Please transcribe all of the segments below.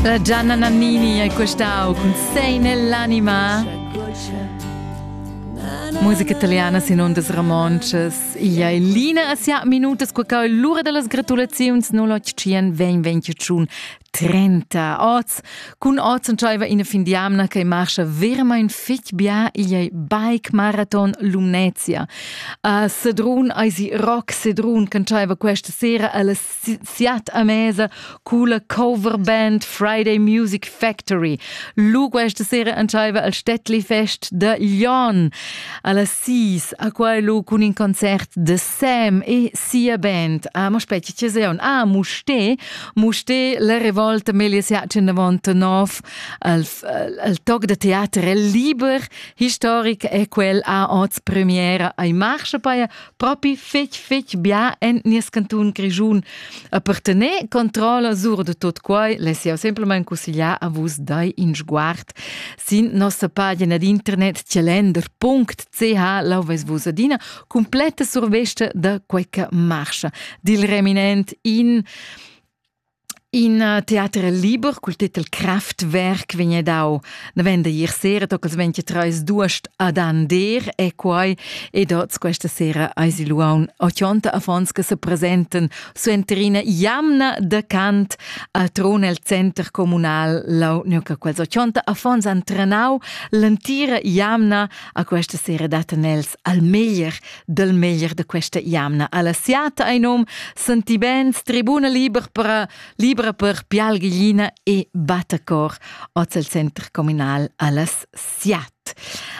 La Gianna Nannini hai questau cun sei nell'anima. Musica italiana sin ondas ramonces. Ia è Lina a sia minutas qua cau l'ura da las gratulaziuns 081 2021 30 oz. Cun oz entschaiva ina fin di amna che marcha vermain fitg bia ia è bike marathon Lumnezia. A Sedrun eisi rock Sedrun che entschaiva questa sera alle siat a mesa cula cover band Friday Music Factory. Lu questa sera antaiva al Städtli Fest de Lyon alla 6 a quai lu cun in concert de Sam e sia band. Ah, mo aspetti, ci seon. Ah, Mouché, Mouché la revolta meglies jacen davant nov al, al toc de teater liber, historic e quel a oz premiera ai marche paia propi fetg fetg bia en nies cantun Grischun. E per tener controlla sur de tot quei, les jau simplement consigliar a vus dai in sguard sin nossa pagina d'internet celender.ch lauves vus adina completa survesta da quei che marcha. Dil reminent in In uh, teater liber cul titel Kraftwerk vegn dau davent da ier sera tocca sventi treis duast ad Ander e quai ed oz questa sera eisi luaun ochonta affons che se presenten suenterina jamna da cant a tron el center comunal lau neuca quels ochonta affons han trenau l'entira jamna a questa sera daten els al meglier del meglier de questa jamna. Alla siata ein um senti bens, tribuna liber per, libra per pialglina e battacor oz el center comunal allas siat.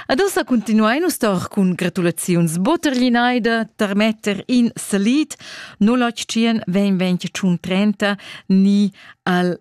Adesso continuai nus tor cun gratulaziuns Botterlinaida, Termetter in Salit 08 20 30 ni al